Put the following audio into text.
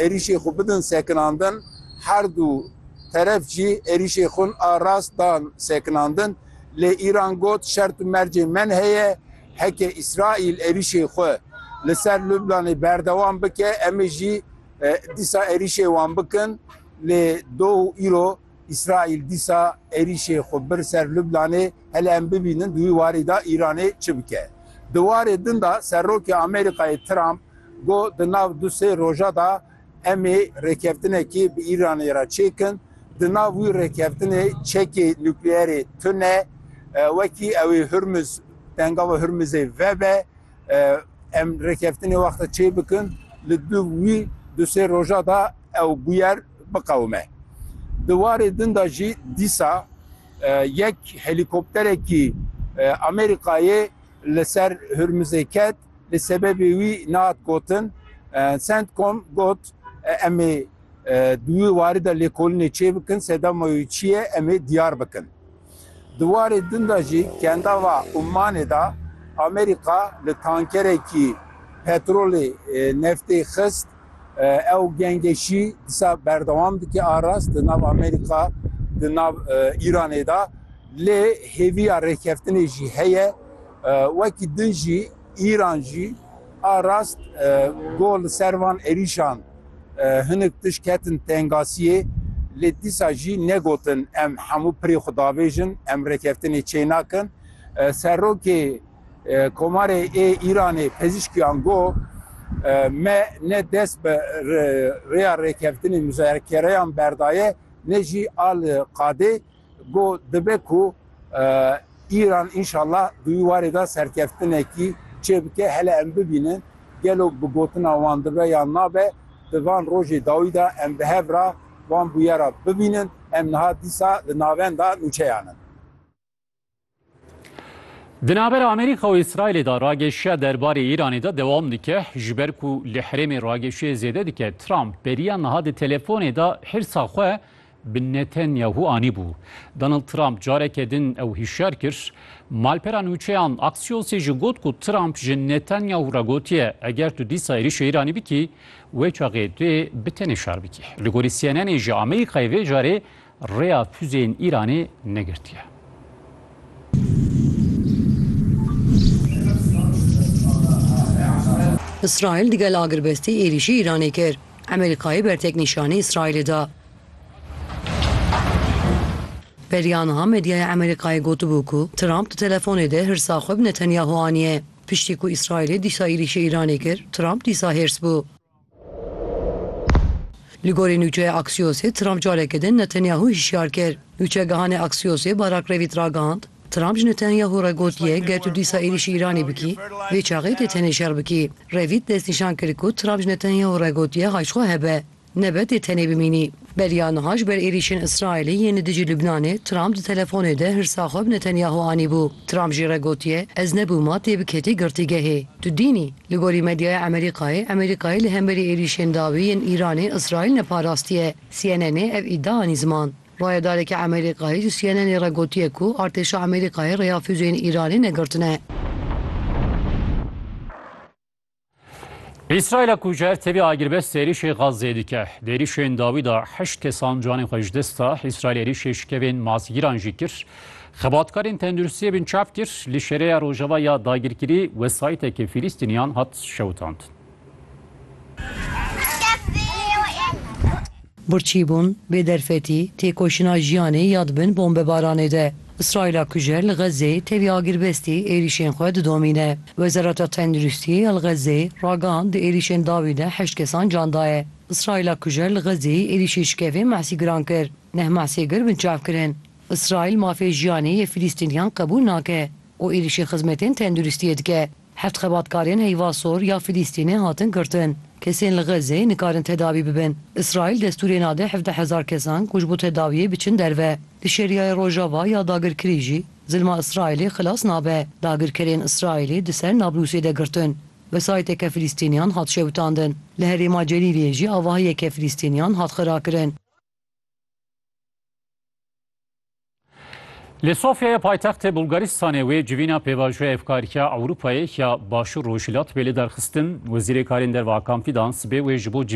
êrîşê xwe bidin sekinandin, her du teref jî êrîşê xwin a rast dan sekinandin, lê Îran got şert û mercên men heye, heke Îsraîl êrîşê xwe li ser Lublanê berdewam bike, em ê jî dîsa êrîşê wan bikin, lê doh û îro. Îsraîl dîsa êrîşê xwe bir ser Lublanê, hele em bibînin di wî warî de Îranê çi bike. Di warê din de Serokê Amerîkayê Trump got di nav du sê roja de em ê rêkeftinekê bi Îranê re çêkin, di nav wî rêkeftinê çekê nukleerê tune wekî ew ê Hurmuz, Tengava Hurmuzê vebe. Em rêkeftinê wexta çê bikin li du wî du sê roja da ew bûyer biqewime. Di warê din da jî dîsa yek helîkopterekî Amerîkayê li ser Hurmizê ket lê sebebê wî nehat gotin. Centcom got em ê di wî warî de lêkolinê çê bikin, sedema wî çi ye em ê diyar bikin. Di warê din de jî kendava Ummanê de Amerîka li tankerekî petrolê neftê xist. Ew gengeşî disa berdewam dike a rast di nav Amerîka di nav Îranê de lê hêviya rêkeftinê jî heye. Wekî din jî Îran jî a rast got li ser van êrîşan. Hinek tişt ketin tengasiyê lê dîsa jî negotin em hemû pirê xwe davêjin, em rêkeftinê çênakin. Serokê Komarê ê Îranê Pezîşkiyan got, Me ne dest bi rêya rêkeftinê muzakereyan berdaye ne jî a li qadê. Got, Dibe ku Îran înşallah di wî warê de serkeftinekî çêbike, hele em bibînin gelo bi gotina wan dibe yan nabe, di van rojê dawî de em bi hev re van bûyera bibînin, em niha dîsa li navenda nûçeyan in. Di navbera Amerîka û Îsraîlê de rageşiya derbarê Îranê de dewam dike. Ji ber ku li herêmê rageşiyê zêde dike, Trump beriya niha di telefonê de hirsa xwe bi Netanyahu anîbû. Donald Trump careke din ew hişyar kir. Malpera nûçeyan Axiosê jî got ku Trump ji Netanyahu re gotiye eger tu dîsa êrîşê Îranê bikî, wê çaxê tu yê bi tenê şar bikî. Li gorî CNNê jî Amerîkayê vê carê rêya fuzeyên Îranê negirtiye. Îsraîl di gel agirbestî êrîşî Îranê kir. Amerîkayê bertek nîşanî Îsraîlê da. Beriya niha medyaya Amerîkayê gotibû ku Trump di telefonê de hirsa xwe bi Netanyahu aniye. Piştî ku Îsraîlê dîsa êrîşê Îranê kir, Trump dîsa hêrs bû. Li gorî nûçeya Aksiyosê Trump careke din Netanyahu hişyar kir. Nûçegihanê Aksiyosê Barak Revît ragihand, Trump ji Netanyahu re gotiye ger tu dîsa êrîşî Îranê bikî, vê çaxê dê tenê şer bikî. Revît destnîşan kir ku Trump ji Netanyahu re gotiye hay ji xwe hebe, nebe dê tenê bimînî. Beriya niha ji ber êrîşên Îsraîlê yên li dijî Lubnanê, Trump di telefonê de hirsa xwe bi Netanyahu anîbû. Trump jî re gotiye, Ez nebûma têbiketî girtîgehê. Tu dînî? Li gorî medyaya Emerîkayê, Emerîkayê li hemberî êrîşên dawî yên Îranê Îsraîl neparastiye. CNNê ev îdia anî ziman. Rayedarekî Emerîkayê ji CNNê re gotiye ku artêşa Emerîkayê rêya fûzeyên Îranê negirtine. Îsraîla ku ji hev tevî agirbest êrîşê Xazzeyê dike. Di êrîşên dawî de heşt kesan canên xwe ji dest da. Îsraîl êrîşê şikevên masgîran jî kir. Xebatkarên tenduristiyê bin çap kir li şereya rojava ya dagirkirî wesayîtekê Fîlîstîniyan hat şewitandin. Birçîbûn, bêderfetî, têkoşîna jiyanê ya di bin bombebaranê de. Îsraîla kujer li Xezzê tevî agirbestî êrîşên xwe didomîne. Wezareta Tenduristî ya li Xezzê ragihand di êrîşên dawî de heşt kesan can daye. Îsraîla kujer li Xezzê êrîşê şikevên Mehsîgiran kir. Neh Mehsêgir binçav kirin. Îsraîl mafê jiyanê yê Filîstîniyan qebûl nake û êrîşê xizmetên tenduristiyê dike. Heft xebatkarên heyva sor ya Filîstînê hatin girtin. Kesên li Xezzeyê nikarin tedawî bibin. Îsraîl destûrê nade hevdeh hezar kesan ku ji bo tedawiyê biçin derve. Di Şerîayê Rojava ya dagirkirî jî zilma Îsraîlê xilas nabe. Dagirkerên Îsraîlê di ser Nablûsê de girtin. Wesayîteke Filîstîniyan hat şewitandin. Li herêma Celîliyê jî avahiyeke Filîstîniyan hat xirakirin. Li Sofyayê paytextê Bulgaristanê wê civîna pêvajoya Hevkarîya Ewropayê ya Başûr Rojhilat bê li derxistin. Wezîrê Karên Derve Hakan Fîdan sibê wê ji bo civîn